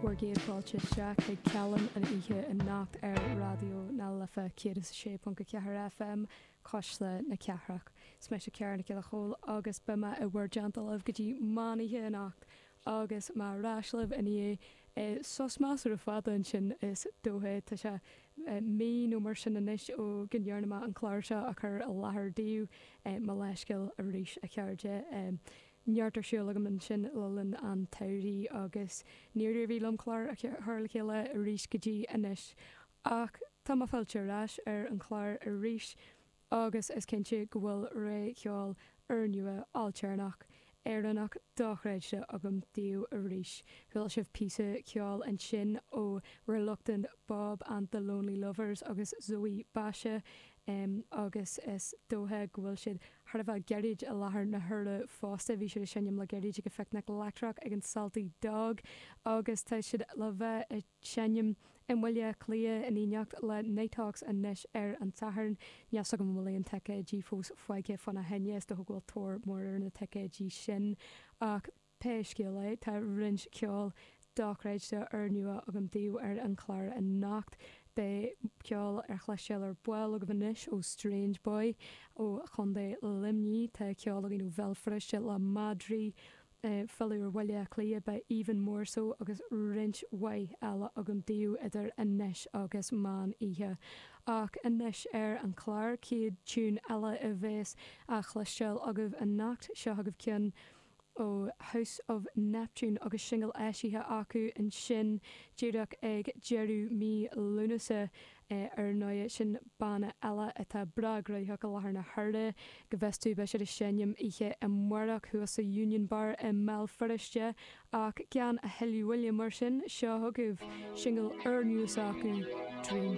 Bhur gcéad fáilte isteach chuig Callán an Oíche anocht ar Raidió na Life 106.4 FM, Cuisle na Cathrach. Is mise Ciara Nic Giolla Chomhaill agus beidh mé i bhur dteannta libh go dtí meán oíche anocht agus mé ar ais libh i ndiaidh sos measartha fada ansin is dóiche, tá sé mí nó mar sin anois ó go ndearna mé an clár seo a chur i láthair daoibh, mo leithscéal arís a chairde. neart ar siúl agam ansin le linn an tsamhraidh agus níor éirigh liom clár a chur le chéile arís go dtí anois. Ach tá mé fillte ar ais ar an chlár arís agus is cinnte go bhfuil rogha cheoil úrnua, ailtéarnach, Éireannach dochreidte agam daoibh arís. Chuala sibh píosa ceoil ansin ó Reluctant Bob and the Lonely Lovers agus Zoe Basha. Em, agus is dóiche go bhfuil siad thar a bheith gairid i láthair na huaire fosta. Bhí siad ag seinm le gairid ag an phicnic leictreach ag an Salty Dog, agus tá siad le bheith ag seinm i mBaile Cliath in éineacht le Nighthawks anois ar an tSatharn. Níl a fhios agam an bhfuil aon ticéidí fós fágtha fána choinne, is dócha go bhfuil tóir mór ar na ticéidí sin, ach. Pé scéal é, tá roinnt ceoil dochreidte úrnua agam daoibh ar an chlár anocht. Beidh ceol á chloisteáil ar ball agaibh anois ó Strange Boy ó Chontae Luimnigh, tá ceol againn ó Bhéal Feirste, le Madraí, filleadh ar Bhaile Átha Cliath, beidh Even More So agus roinnt mhaith eile agam daoibh idir anois agus meán oíche. Ach anois ar an chlár, chéad tiún eile a bheas á chloisteáil agaibh anocht, seo agaibh ceann ó House of Neptune agus singil eisithe acu ansin díreach ag deireadh mí Lúnasa. Ar ndóigh, sin banna eile atá breá gnoitheach i láthair na huaire. Go bhfios domh, beidh siad ag seinm oíche amárach thuas sa Union Bar i mBéal Feirste. Ach gan a thuilleadh moille mar sin, seo chugaibh singil úrnua s'acu, Dream.